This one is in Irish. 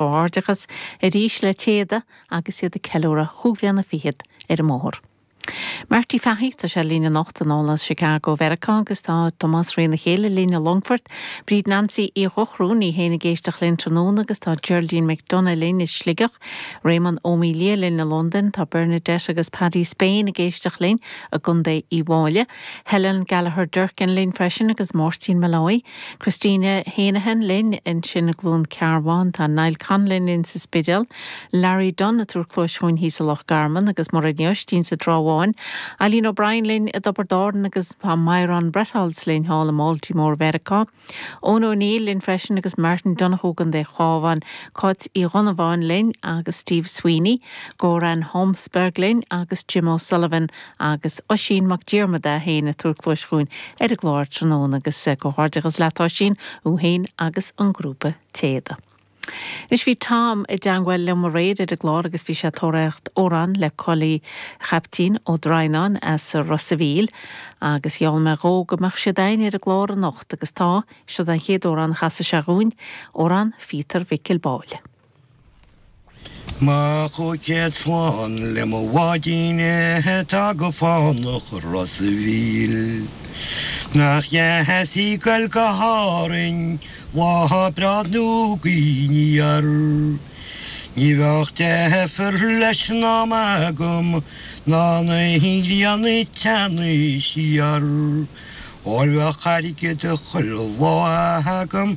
gcomhghairdeachas arís le Téada agus iad ag ceiliúradh chúig bhliana fichead ar an mbóthar. Marty Fahy tá sé linn anocht anall as Chicago Mheiriceá agus tá Tomás Rionn a chéile linn i Longfort. Bríd Nancy Uí Dhochru, í féin ag éisteach linn tráthnóna agus tá Geraldine McDonagh linn i Sligeach. Réamonn Ó Maoildhia linn i Londain. Tá Bernadette agus Paddy Spain ag éisteach linn i gContae Uíbh Fhailí. Helen Gallagher Durkin linn freisin agus Máirtín Molloy. Christina Heneghan linn ansin i gCluain Cearbán, tá Niall Conlon linn sa Spidéal, Larry Dunne ag tabhairt cluais chugainn thíos i Loch Garman agus Mairéad Ní Oistín sa Trá Bháin, Aileen O'Brien linn i dTiobraid Árann agus tá Myron Bretholz linn thall i mBaltimore Mheiriceá, Eoin O'Neill linn freisin agus Martin Donohoe i gContae an Chabháin, Cáit Uí Dhonnabháin linn agus Steve Sweeney, Goran Holmsberg linn agus Jim O'Sullivan Agus Oisín Mac Diarmada é féin ag tabhairt cluais chugainn ar an gclár tráthnóna agus comhghairdeachas leat Oisín, thú féin agus an grúpa Téada. Anois bhí Tom i dteangmháil liom aréir ar an gclár agus bhí sé ag tóraíocht amhrán le Coley Chaiptín Ó Droighneáin as Ros a Mhíl agus gheall mé dhó go mbeadh siad a'ainn ar an gclár anocht agus tá, siod an chéad amhrán a chasfaidh sé dhúinn, amhrán Phíotair Mhicil Báille. Mo chúig chéad slán le mo bháidín é atá go fánach i Ros a' Mhíl, Nach ba dheas í ag goil go hÁrainn lá breá nó gaoth aniar, Ní bheadh deifir leis na maidí agam ná na hinghean ag teannadh siar, Ó bheadh airgead chuile lá agam